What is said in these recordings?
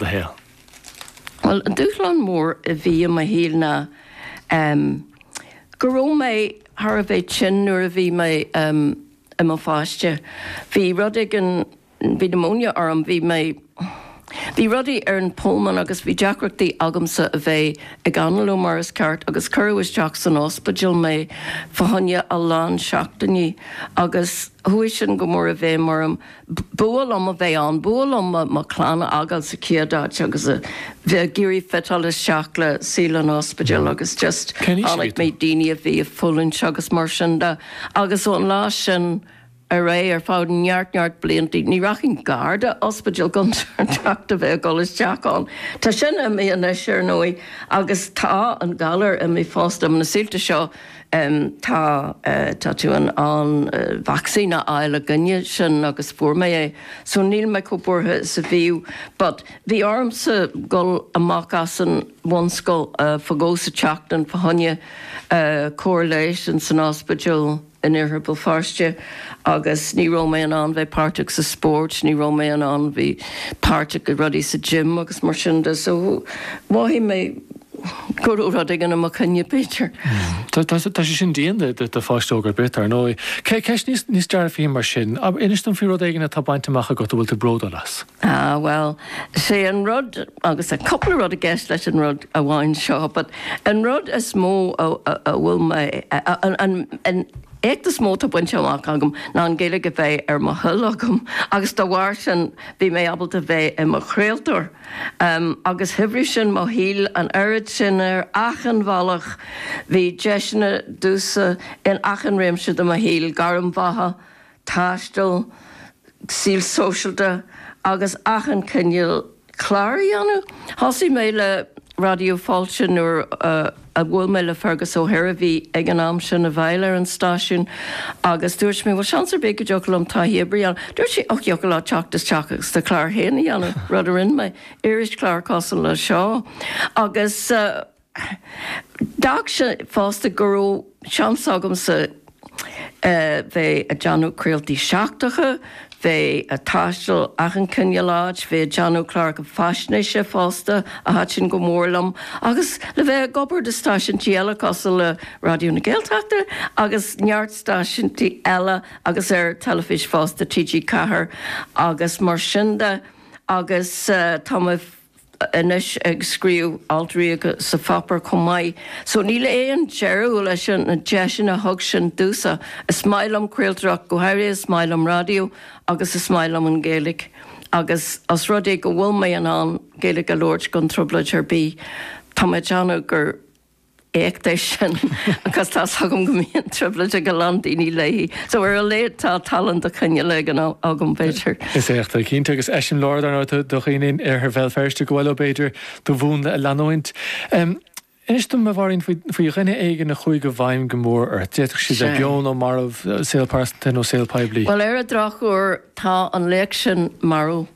do shaol. Bhuel, an dúshlán mór a bhí i mo shaol ná go raibh mé thar a bheith tinn nuair a bhí mé i mo pháiste. Bhí rud éigin, bhí pneumonia orm, bhí mé, bhí rudaí ar an pulmón agus bhí deacrachtaí agamsa a bheith ag análú mar is ceart agus cuireadh isteach san ospidéal mé fá choinne a lán seachtainí agus chuaigh sin go mór i bhfeidhm orm. B'fhuath liom a bheith ann, b'fhuath liom mo chlann a fhágáil sa chéad áit agus a bheith ag iarraidh fiteáil isteach le saol an ospidéil agus just chonaic mé, daoine a bhí ag fulaingt agus mar sin de agus ón lá sin ar aghaidh, ar feadh neart, neart blianta, ní rachainn gar do ospidéal gan trácht a bheith ag dul isteach ann. Tá sin imithe anois, ar ndóigh, agus tá an galar imithe fosta, na saolta seo, Tá, tá tú in ann vacsaín a fháil i gcoinne sin agus fuair mé é so níl mé chomh buartha is a bhíodh but bhí ormsa a ghabháil amach as an bhunscoil fá dhó sa tseachtain fá choinne cóir leighis insan ospidéal in iarthar Bhéal Feirste agus ní raibh mé in ann bheith páirteach sa spórt, ní raibh mé in ann bheith páirteach i rudaí sa gym agus mar sin de so mhothaigh mé go raibh rud éigin i mo choinne, b'fhéidir. Tá sé sin dian do pháiste óg ar bith, ar ndóigh. Ceist níos dearfaí mar sin, inis dom faoi rud éigin atá bainte amach agat a bhfuil tú bródúil as. Ah, bhuel, sé an rud, agus tá cúpla rud i gceist leis an rud amháin seo, but an rud is mó a bhfuil mé, an éacht is mó atá bainte amach agam ná an Ghaeilge a bheith ar mo thoil agam agus dá bharr sin bhí mé ábalta bheith i mo chraoltóir. agus shaibhrigh sin mo shaol an oiread sin ar achan bhealach, bhí deiseanna domhsa in achan réimse de mo shaol, gairm bheatha, taisteal, saol sóisialta agus achan chineál cláir a dhéanamh. Thosaigh mé le Raidió Fáilte nuair a. a bhuail mé le Fergus O'Hare a bhí ag an am sin i bhfeighil ar an stáisiún agus dúirt mé bhuel seans ar bith go dtiocfadh liom taithí oibre a dhéanamh. Dúirt sé och, thiocfadh leat teacht isteach agus do chlár féin a dhéanamh, rud a rinne mé, irischlár cosúil le seo agus d'fhág sin fosta go raibh seans agamsa, bheith ag déanamh craoltaí seachtracha, bheith ag taisteal achan cineál áit, bheith ag déanamh cláracha faisnéise fosta, a thaitin go mór liom, agus le bheith ag obair do stáisiúintí eile cosúil le Raidió na Gaeltachta agus neart stáisiúintí eile agus ar teilifís fosta, TG4 agus mar sin de, agus tá mé. anois ag scríobh alt ríoga sa pháipéar chomh maith, so níl aon deireadh leis na deiseanna a thug sin domhsa. Is maith liom craoltóireacht, go háirithe is maith liom raidió agus is maith liom an Ghaeilge agus os rud é go bhfuil mé in ann Gaeilge a labhairt gan trioblóid ar bith, tá mé ag déanamh gur. éacht é sin agus tá 's agam go mbíonn trioblóid ag a lán daoine léi. So ar a laghad tá tallann de chineál éigin agam b'fhéidir. Is éacht é cinnte agus eiseamláir dar ndóigh do dhaoine in iarthar Bhéal Feirste go bhfuil ó b'fhéidir do mhúnla a leanúint. Inis dom a Mháirín faoi dhuine éigin a chuaigh i bhfeidhm go mór ort, d'fhéadfadh siad bheith beo nó marbh, saol pearsanta nó saol poiblí. Bhuel ar an drochuair tá an laoch sin marbh.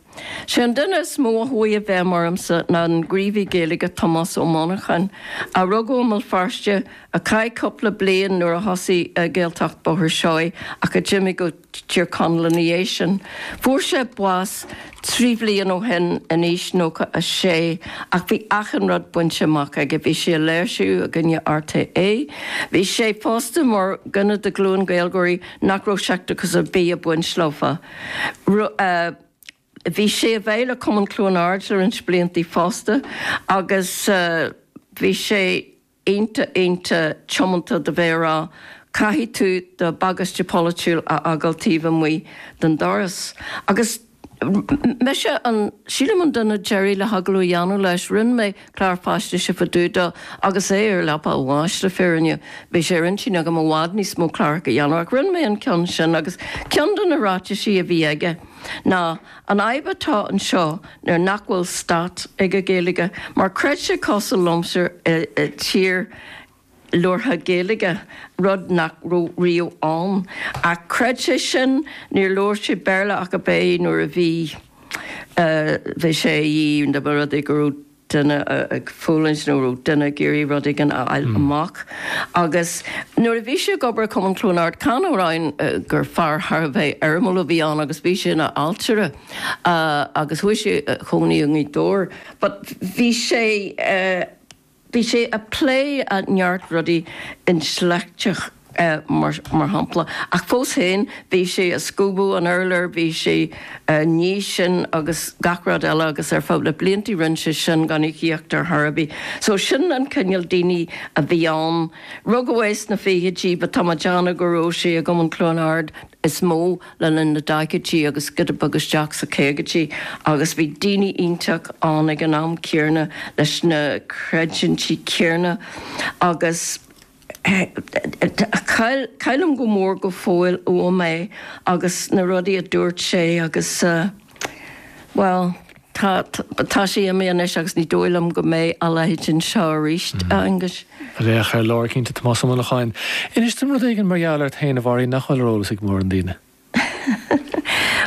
Sé an duine is mó a chuaigh i bhfeidhm ormsa ná an gníomhaí Gaeilge Tomás Ó Monacháin, a rugadh i mBéal Feirste, a chaith cúpla bliain nuair a thosaigh Gaeltacht Bhóthar Seoighe ach a d'imigh go Tír Chonaill ina dhiaidh sin. Fuair sé bás trí bhliain ó shin in aois 96 ach bhí achan rud bainte amach aige, bhí sé i léirsiú i gcoinne RTÉ, bhí sé fosta mar dhuine de ghlúin Gaeilgeoirí nach raibh seicteachas ar bith ag baint leofa. Bhí sé i bhfeighil Cumann Chluain Aird le roinnt blianta fosta agus bhí sé iontach, iontach tiomanta do bheith ag rá, 'Caithfidh tú do bhagáiste polaitiúil a fhágáil taobh amuigh den doras. Agus mise, sílim an duine deiridh le hagallamh a dhéanamh leis. Rinne mé. Clár faisnéise fá dtaobh dó agus é ar leapa a bháis le fírinne. Bhí sé ar intinn agam i bhfad níos mó cláracha a dhéanamh ach rinne mé an ceann sin agus ceann de na ráitisí a bhí aige ná, An fhadhb atá anseo nuair nach bhfuil stát ag an Ghaeilge mar creid sé cosúil liomsa i dtír labhartha Gaeilge, rud nach raibh riamh ann. Ach chreid sé sin, níor labhair sé Béarla ach ab é nuair a bhí sé dá mba rud é go raibh duine ag fulaingt nó go raibh duine ag iarraidh rud éigin a fháil amach. Agus nuair a bhí sé ag obair i Cumann Chluain Ard, chan amháin gur fear thar a bheith éirimiúil a bhí ann agus bhí sé ina ailtire agus chuaigh sé a chónaí i nGaoth Dobhair but bhí sé, Bhí sé ag plé neart rudaí intleachtach, mar shampla, ach fós féin, bhí sé ag scuabadh an urláir, bhí sé ag ní sin agus gach rud eile agus ar feadh na blianta rinne sé sin gan íocaíocht ar bith. So sin an cineál daoine a bhí ann. Rugadh é sna fichidí, but tá mé ag déanamh go raibh sé i gCumann Chluain Ard is mó. le linn na daichidí agus giota beag isteach sna caogaidí agus bhí daoine iontacha ann ag an am céanna leis na creidiúintí céanna agus caillim go mór go fóill uaim é agus na rudaí a dúirt sé agus bhuel. Tá, tá sí imí anois agus ní dóigh liom go mbeidh a leithéid anseo arís, a Aonghuis. Laoch ar lár cinnte. Tomás Ó Monacháin, Inis dom rud éigin mar gheall ort féin, a Mhary, nach bhfuil ar eolas ag mórán daoine.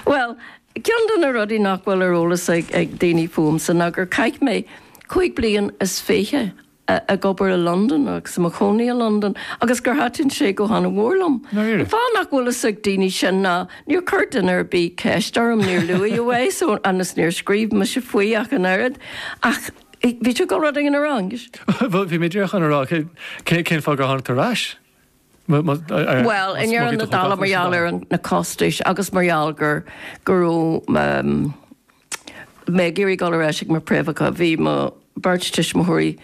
Bhuel, ceann de na rudaí nach bhfuil ar eolas ag, ag daoine fúmsa ná gur chaith mé cúig bliain is fiche a ag obair i Londain agus i mo chónaí i Londain agus gur thaitin sé go han-mhór liom. An fáth nach bhfuil fhios ag daoine sin ná níor chuir duine ar bith ceist orm, níor luaigh mé é so agus níor scríobh mise faoi ach an oiread. Ach bhí tú ag dul rud éigin a rá, an. Bhuel, bhí mé díreach chun a rá cén fáth gur tháinig tú ar ais. Bhuel, i ndeireadh na dála mar gheall ar na costais agus mar gheall go raibh. mé ag iarraidh dul ar ais ag mo phréamhacha. Bhí mo bheirt tuismitheoirí,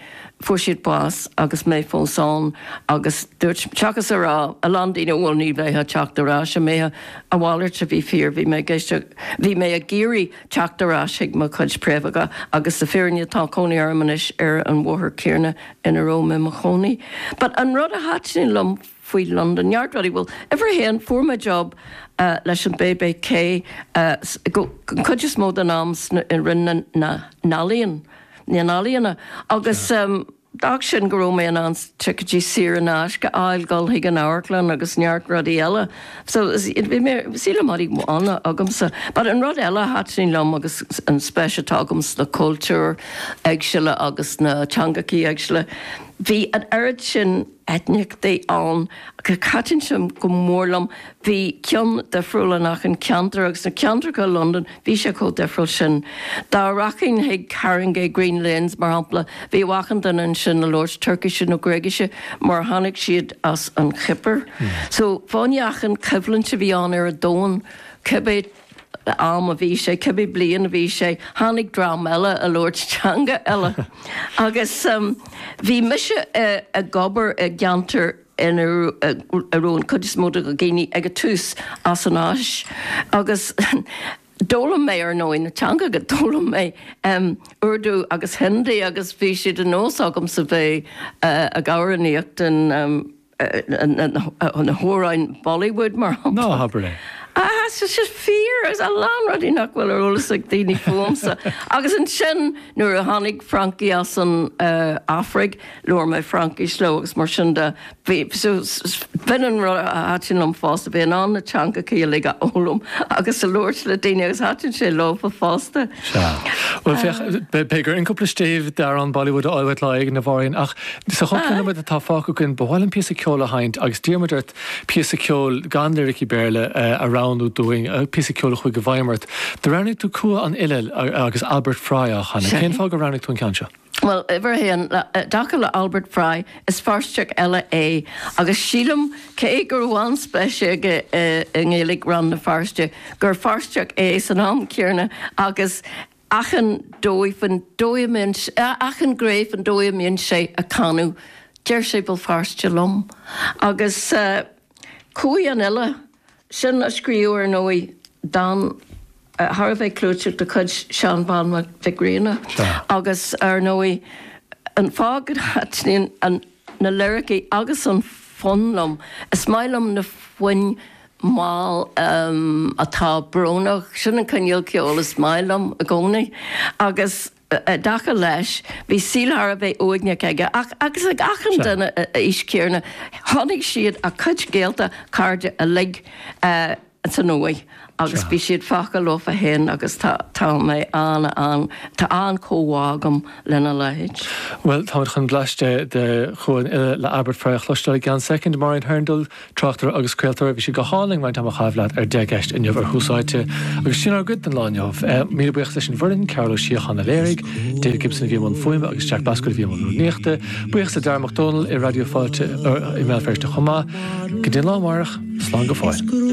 fuair siad bás agus mé fós ann agus dúirt, seachas a rá, a lán daoine, bhuel, ní bheidh tú ag teacht ar ais. An mbeidh? A mhalairt a bhí fíor. Bhí mé, bhí mé ag iarraidh teacht ar ais chuig mo chuid préamhacha agus sa fírinne tá cónaí orm anois ar an bhóthar céanna ina raibh mé mo chónaí. But an rud a thaitin liom faoi London neart rudaí bhuel. Uimhir a haon, fuair mé job leis an BBC, an chuid is mó den am i Roinn na nEalaíon, agus d'fhág sin go raibh mé in ann ticéidí saor in aisce a fháil dul chuig an amharclann agus neart rudaí eile. So bhí mé, sílim rudaí bána agamsa. But an rud eile a thaitin liom agus an spéis atá agam sna cultúir éagsúla agus na teangachaí éagsúla, bhí an oiread sin, eitneachtaí ann agus thaitin sé go mór liom, bhí cionn difriúil in achan ceantar agus na ceantracha i Londain bhí sé chomh difriúil sin. Dá rachainn chuig Haringey Green Lanes, mar shampla, bhíodh achan duine ansin ag labhairt Tuircise nó Gréigise mar tháinig siad as an Chipir. So, fá choinne achan coimhlint a bhí ann ar an domhan, cibé. am a bhí sé, cibé bliain a bhí sé, tháinig dream eile ag labhairt teanga eile. Agus bhí mise ag obair i gceantar ina raibh an chuid is mó de na daoine ag an tús as an Áise agus d'fhoghlaim mé, ar ndóigh, na teangacha. D'fhoghlaim mé Urdu agus Hindi agus bhí sé de nós agamsa bheith ag amhránaíocht in. na hamhráin Bollywood, mar shampla. Ná habair é! Sea, sea, sea, fíor, agus a lán rudaí nach bhfuil ar eolas ag daoine fúmsa. Agus ansin, nuair a tháinig Francaigh as an Afraic, labhair mé Fraincis leo agus mar sin de, bhí, b'in an rud a thaitin liom fosta, bhí in ann na teangachaí uilig a fhoghlaim agus a labhairt le daoine agus thaitin sé leo fosta. Sea. Bhuel, féach, b'fhéidir, an cúpla stéibh d'amhrán Bollywood a fháil uait lá éigin, a Mháirín, ach Sa chúpla nóiméad atá fágtha againn, ba mhaith liom píosa ceoil a sheinnt agus d'iarr muid ort píosa ceoil gan liricí Béarla a roghnú dúinn, píosa ceoil a chuaigh i bhfeidhm ort. Do roghnaigh tú Cumha an Fhile agus Albert Fry á chanadh. Cén fáth gur roghnaigh tú an ceann seo? Bhuel, uimhir a haon, i dtaca le Albert Fry, is Feirsteach eile é agus sílim, cé go raibh an-speis aige i nGaeilge Rann na Feirste, gur Feirsteach é san am céanna agus. achan dóigh faoin dóigh a mbíonn sé, achan ghné faoin dóigh a mbíonn sé ag canadh, deir sé Béal Feirste liom. Agus Cumha an Fhile sin, a scríobh, ar ndóigh, dán thar a bheith clúiteach de chuid Sheán Bán Mhic Grianna, agus ar ndóigh, an fáth go dtaitníonn na liricí agus an fonn liom, is maith liom na foinn mall atá brónach. Sin an cineál ceoil is maith liom i gcónaí. Agus i dtaca leis, bhí saol thar a bheith uaigneach aige, agus ag achan duine a aois chéanna, chonaic siad a gcuid gaolta, cairde uilig, ins an uaigh agus bhí siad fágtha leofa féin agus tá tá mé an an, tá an-chomhbhá agam lena leithéid. Bhuel, táimid chun bleaist de Chumha an Fhile le Albert Fry a chloisteáil i gceann soicind. Máirín Hurndall, Tráchtaire agus craoltóir, bhí sé go hálainn roinnt ama a chaitheamh leat ar Deich gCeist inniu ar Thús Áite agus sin ár gcuid don lá inniu. Míle buíochas leis an bhfoireann, Cearbhall Ó Síocháin a léirigh, Dave Gibson a bhí i mbun fuaime agus Jack Bascombe a bhí i mbun rúnaíochta. Buíochas le Darragh Mac Dónaill i Raidió Fáilte i mBéal Feirste chomh maith. Go dtí an lá amárach, slán go fóill.